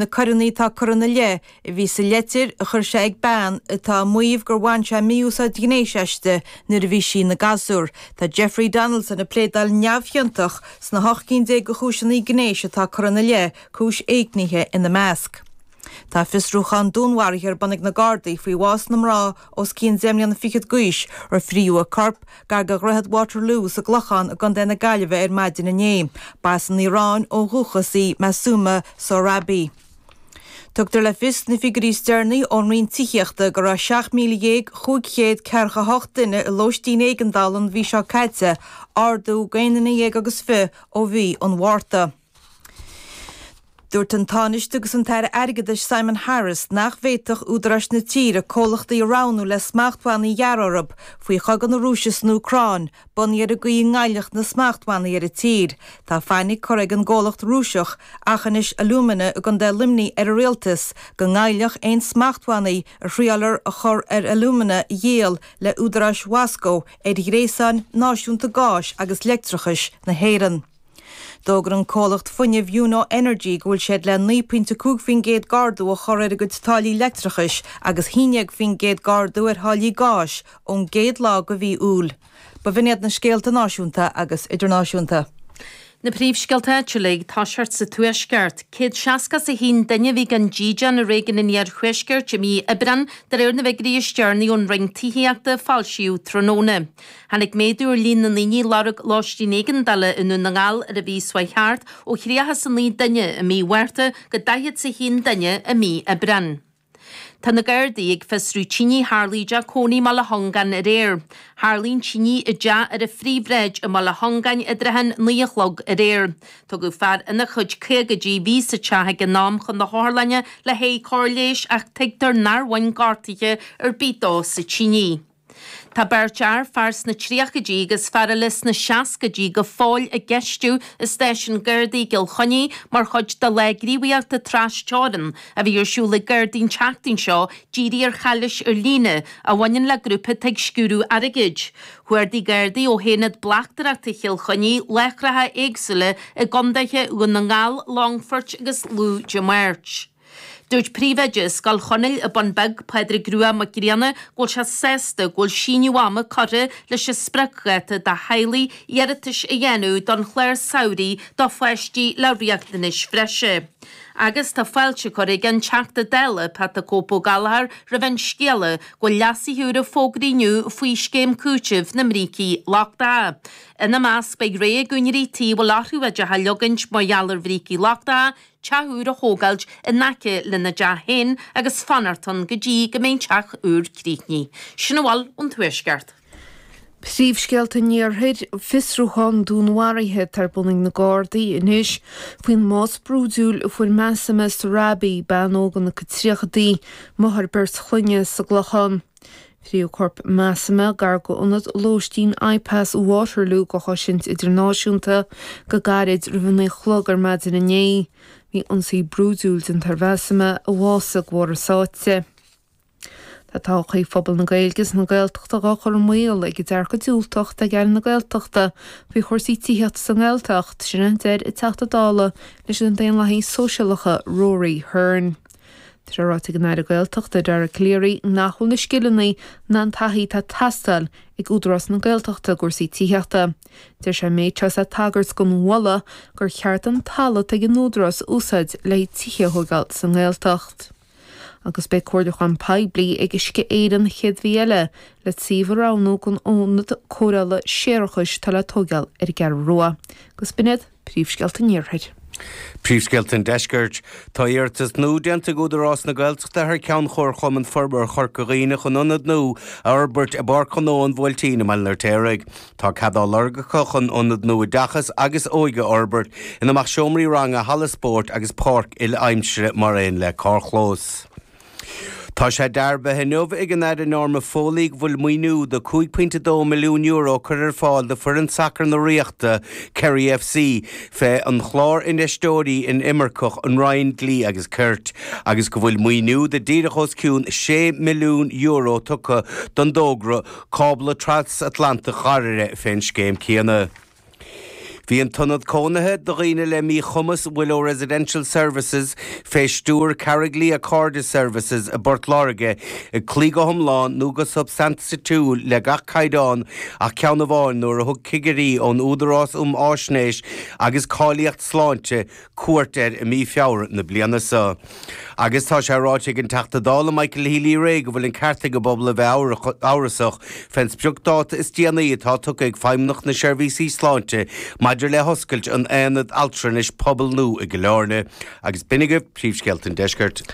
na coireanna atá curtha ina leith a bhí sa leitir a chuir sé ag bean atá ag maíomh gur bhain sé mí-úsáid ghnéis aisti nuair a bhí sí ina gasúr. Tá Jeffrey Donaldson ag pléadáil neamhchiontach sna hocht gcinn déag de chúiseanna gnéis atá curtha ina leith, cúis éignithe ina measc. Tá fiosrúchán dúnmharaithe ar bun ag na Gardaí faoi bhás na mná, os cionn deich mbliana fichead d'aois a frítheadh a corp gar do dhroichead Waterloo sa gClochán i gContae na Gaillimhe ar maidin inné. Ba as an Iaráin ó dhúchas í Massouma Sohrabi. Tugtar le fios sna figiúirí is deireanaí ón Roinn Tithíochta go raibh 17,500 ceathracha a hocht duine i lóistín éigeandála an mhí seo caite, ardú d'aon déag agus fiche ó mhí an Mhárta. Dúirt an Tánaiste agus an tAire Airgeadais Simon Harris nach bhféadfadh údaráis na tíre comhlachtaí a roghnú le smachtbhannaí a ghearradh orthu faoi chogadh na Rúise san Úcráin, bunaithe ar an gcaoi a ngoillfeadh na smachtbhannaí ar an tír. Tá fainic curtha ag an gcomhlacht Rúiseach, Achinaish Alumina i gContae Luimnigh ar an Rialtas go ngoillfeadh aon smachtbhannaí a thriailear a chur ar alumina a dhíol le húdaráis Mhoscó ar ghréasán náisiúnta gáis agus leictreachais na hÉireann. D'fhógair an comhlacht fuinnimh Uno Energy go bhfuil siad le 9.5% d'ardú a chur ar a gcuid táillí leictreachais agus 11% d'ardú ar tháillí gáis ón gcéad lá de mhí Iúil. B'shin iad na scéalta náisiúnta agus idirnáisiúnta. Na príomhscéalta áitiúla, i dtosach sa Tuaisceart. Céad seasca is a haon duine a bhí gan dídean i réigiún an iarthuaiscirt i mí Aibreán, de réir na bhfigiúirí is deireanaí ón Roinn Tithíochta a foilsíodh tráthnóna. Tháinig méadú ar líon na ndaoine a lorg lóistín éigeandála i nDún na nGall ar an mhí seo a chuaigh thart ó thríocha 's a naoi nduine i mí Mhárta go daichead 's a haon nduine i mí Aibreán. Tá na Gardaí ag fiosrú tine a tharlaigh i dteach cónaithe i mBealach Conglais aréir. Tharlaigh an tine i dteach ar an Phríomhshráid i mBealach Conglais i dtrátha an naoi a chlog aréir. Tugadh fear ina chuid caogaidí a bhí sa teach ag an am chun na hotharlainne le haghaidh cóir leighis ach tuigtear nár bhain gortuithe ar bith dó sa tine. Tá beirt fhear, fear sna tríochaidí agus fear eile sna seascaidí, go fóill á gceistiú i Stáisiún Gardaí i gCill Chainnigh mar chuid de lá gníomhaíochta tras teorann a bhí ar siúl ag Gardaí an tseachtain seo dírithe ar chalaois ar líne a bhaineann le grúpa atá ag sciúradh airgid. Chuardaigh Gardaí ó Aonad Bleachtaireachta Chill Chainnigh láithreacha éagsúla i gContaetha Dhún na nGall, Longfoirt agus Lú Dé Máirt. Dúirt Príomhoide Scoil Chonaill An Bun Beag, Pádraig Rua Mac Grianna, go bhfuil sé sásta go bhfuil síneadh ama curtha leis an spriocdháta do theaghlaigh iarratais a dhéanamh don chlár samhraidh do pháistí le riachtanais bhreise agus tá fáilte curtha ag an Teachta Dála Pat 'The Cope' Ó Gallagher roimh an scéala go bhfuil leasuithe úra fógartha inniu faoi Scéim Cúitimh na mBrící Lochtacha. Ina measc beidh rogha ag úinéirí tí a bhfuil orthu iad a atógáint mar gheall ar bhrící lochtacha, teach úr a thógáilt in aice lena dteach féin agus fanacht ann go dtí go mbeidh an teach úr críochnaithe. Sin a bhfuil ón Tuaisceart. Príomhscéalta an Iarthair, Fiosrúchán dúnmharaithe atá ar bun ag na Gardaí anois faoin mbás brúidiúil a fuair Masuma Sarabi, bean óg ina 30idí, máthair beirt chloinne, sa gClochán. Fritheadh corp Masuma gar do ionad lóistín IPAS Waterloo do chosaint idirnáisiúnta go gairid roimh a naoi chlog ar maidin inné. Bhí ionsaí brúidiúil déanta ar Mhasuma a bhásaigh de bharr sáite. Tá todhchaí phobal na Gaeilge is na Gaeltachta dhá cur i mbaol ag dearcadh diúltach atá ag Aire na Gaeltachta faoi chúrsaí tithíochta sa nGaeltacht, sin a deir an Teachta Dála leis na Daonlathaigh Sóisialta, Rory Hearne. Tá ráite ag an Aire Gaeltachta Dara Calleary nach bhfuil na scileanna ná an taithí atá ag teastáil ag Údarás na Gaeltachta i gcúrsaí tithíochta. Dúirt sé an méid seo is é ag tagairt don mholadh gur cheart an talamh atá ag an Údarás a úsáid le haghaidh tithe a thógáil sa nGaeltacht. Agus beidh comhairliúchán poiblí ag Uisce Éireann an chéad mhí eile le suíomh a roghnú don ionad cóireála séarachais atá le tóigeáil ar an gCeathrú Rua. Agus b'in iad. Príomhscéalta an Iarthair. Príomhscéalta an Deiscirt. Tá iarratas nua déanta ag Údarás na Gaeltachta thar ceann Chomharchumann Forbartha Chorca Dhuibhne chun ionad nua a fhorbairt i bPáirc Ghnó an Bhuailtín i mBaile an Fheirtéaraigh. Tá cead á lorg acu chun ionad nua oideachais agus óige a fhorbairt, ina mbeadh seomraí ranga, halla spóirt agus páirc uile-aimsire mar aon le carrchlós. Tá sé dearbhaithe inniu ag an Aire Norma Foley go bhfuil maoiniú de €5.2 milliún curtha ar fáil d'fhoireann sacair na Ríochta, Kerry FC, fé an Chlár Infheisteoirí Inimirceach an Roinn Dlí agus Cirt, agus go bhfuil maoiniú de díreach os cionn €6 milliún tugtha don dtógra cábla tras-Atlantaigh Dhairbhre fén scéim céanna. Bhí an t-ionad cónaithe do dhaoine le míchumas, Willow Residential Services, fé stiúir Carriglea Cairde Services i bPort Láirge, ag cloí go hiomlán nó go substaintiúil le gach caighdeán ach ceann amháin nuair a thug cigirí ón Údarás um Fhaisnéis agus Cáilíocht Sláinte cuairt air i mí Feabhra na bliana so. Agus tá sé ráite ag an Teachta Dála Michael Healy-Rae go bhfuil an ceart ag an bpobal a bheith amhrasach fén sprioc-dáta is déanaí atá tugtha ag Feidhmeannacht na Seirbhíse Sláinte maidir le hoscailt an Aonad Altranais Pobail nua i gCill Áirne. Agus b'in agaibh príomhscéalta an Deiscirt.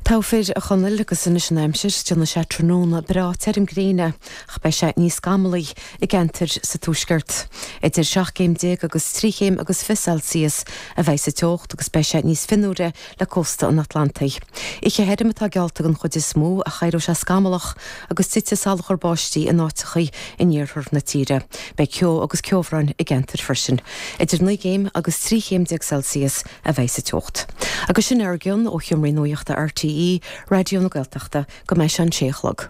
Go raibh maith agat a Chonaill agus anois an aimsir, déanfaidh sé tráthnóna breá tirim gréine ach beidh sé níos scamallaí i gceantair sa tuaisceart, idir seacht gcéim déag agus trí chéim agus fiche Celsius a bheidh sa teocht agus beidh sé níos fionnuaire le cósta an Atlantaigh. Oíche thirim atá geallta den chuid is mó ach éireoidh sé scamallach agus titfidh salachar báistí in áiteachaí in iarthar na tíre. Beidh ceo agus ceobhrán i gceantair freisin. Idir naoi gcéim agus trí chéim déag Celsius a bheidh sa teocht. Agus sin a bhfuil againn ó sheomra nuachta RTÉ Raidió na Gaeltachta go mbeidh sé a sé a chlog.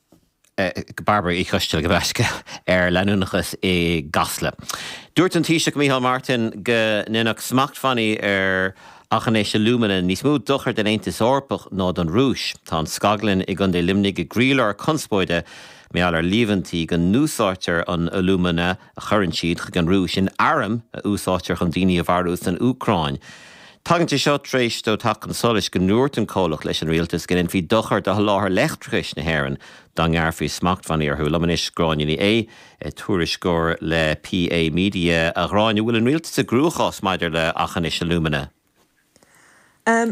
ag Bairbre Uí Choisteal go beacht ar leanúnachas i gCasla. Dúirt an Taoiseach Micheál Martin go ndéanfadh smachtbhannaí ar Aughinish Alumina níos mó dochair don Aontas Eorpach ná don Rúis. Tá an scaglann i gContae Luimnigh i gcroílár conspóide de gheall ar líomhaintí go n-úsáidtear an t-alúmana, a chuireann siad chuig an Rúis in airm a úsáidtear chun daoine a mharú san Úcráin. Tagann sé seo tar éis dó teacht chun solais go ndúirt an comhlacht leis an rialtas go ndéanfaí dochar do sholáthar leictreachais na hÉireann dá ngearrfaí smachtbhannaí orthu. Liom anois Gráinne Ní Aodha, tuairisceoir le PA Media, a Ghráinne, an bhfuil an rialtas i gcruachás maidir le Aughinish Alumina.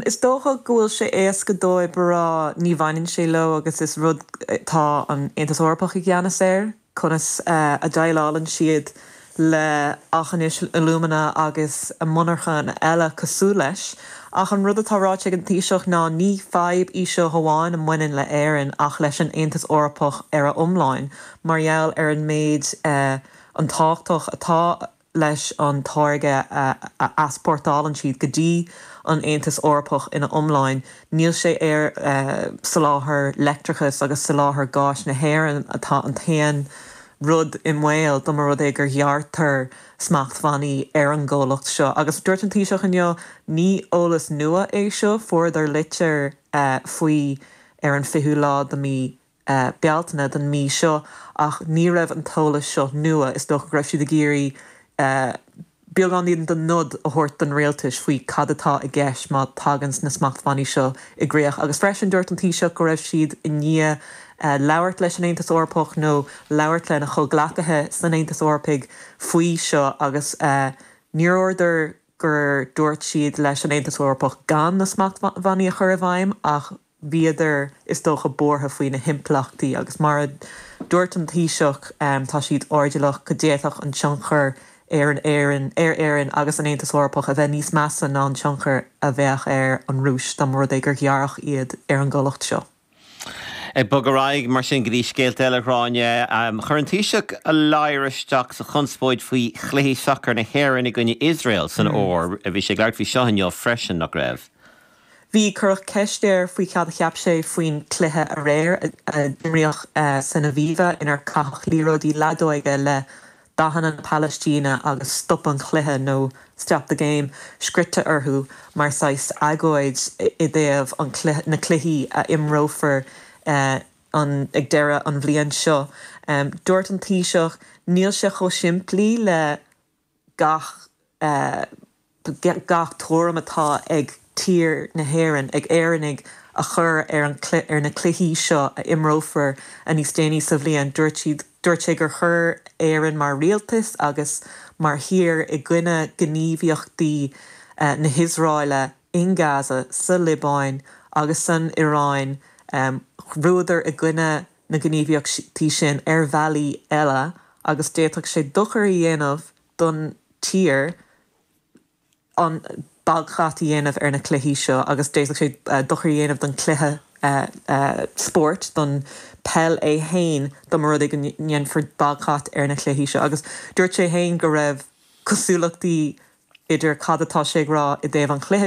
Is dócha go bhfuil sé éasca dóibh a rá ní bhaineann sé leo agus is rud atá an Aontas Eorpach i gceannas air, conas a ndéileálann siad le Aughinish Alumina agus monarchana eile cosúil leis. Ach an rud atá ráite ag an Taoiseach ná ní fadhb í seo amháin a mbaineann le Éirinn ach leis an Aontas Eorpach ar a iomláin mar gheall ar an méid an tábhachtach atá leis an táirge a easpórtálann siad go dtí an Aontas Eorpach ina iomláin, níl sé ar soláthar leictreachais agus soláthar gáis na hÉireann atá an t-aon rud i mbaol dá mba rud é gur ghearrtar smachtbhannaí ar an gcomhlacht seo. Agus dúirt an Taoiseach inniu, ní eolas nua é seo, fuaireadar litir faoi ar an 20ú lá de mí. Bealtaine den mhí seo ach ní raibh an t-eolas seo nua, is dócha go raibh siad ag iarraidh beagáinín den nod a thabhairt don rialtais faoi cad atá i gceist má tagann na smachtbhannaí seo i gcríoch agus freisin dúirt an Taoiseach go raibh siad i ndiaidh labhairt leis an Aontas Eorpach nó labhairt lena chomhghleacaithe san Aontas Eorpaigh faoi seo agus níor dhúradar gur dúirt siad leis an Aontas Eorpach gan na smachtbhannaí a chur i bhfeidhm ach bhíodar is dócha buartha faoi na himpleachtaí agus mar a dúirt an Taoiseach tá siad airdeallach go d'fhéadfadh an tionchar ar an Éirinn, ar Éirinn agus an Aontas Eorpach a bheith níos measa ná an tionchar a bheadh ar an Rúis dá mba rud é gur ghearrfadh iad ar an gcomhlacht seo. Ag bogadh ar aghaidh mar sin go dtí scéalta eile, a Ghráinne. Chuir an Taoiseach a ladhar isteach sa chonspóid faoi chluichí sacair na hÉireann i gcoinne Iosrael san fhómhar. Bhí sé ag labhairt faoi seo inniu freisin, nach raibh? Bhí cuireadh ceist air faoi cad a cheap sé faoin cluiche aréir a d'imríodh san Aviva inar caitheadh liathróidí leadóige le dathanna na Palaistíne agus Stop an Chluiche nó Stop the Game scrite orthu mar saghas agóid i dtaobh an na cluichí a imreofar an ag deireadh an bhliain seo. Dúirt an Taoiseach, Níl sé chomh simplí le. gach gach tuairim atá ag tír na hÉireann, ag Éireannaigh, a chur ar an ar na cluichí seo a imreofar a níos déanaí sa bhliain. Dúirt siad dúirt sé gur chuir Éireann mar rialtas agus mar thír i gcoinne gníomhaíochtaí na hIosráile in Gaza, sa Liobáin agus san Iaráin, go rabhadar i gcoinne na gníomhaíochtaí sin ar bhealaí eile agus d'fhéadfadh sé dochar a dhéanamh don tír an baghcat a dhéanamh ar na cluichí seo agus d'fhéadfadh sé dochar a dhéanamh don chluiche spóirt, don peil é fhéin dá mba rud é go ndéanfar baghcat ar na cluichí seo agus dúirt sé fhéin go raibh cosúlachtaí idir cad atá sé ag rá i dtaobh an chluiche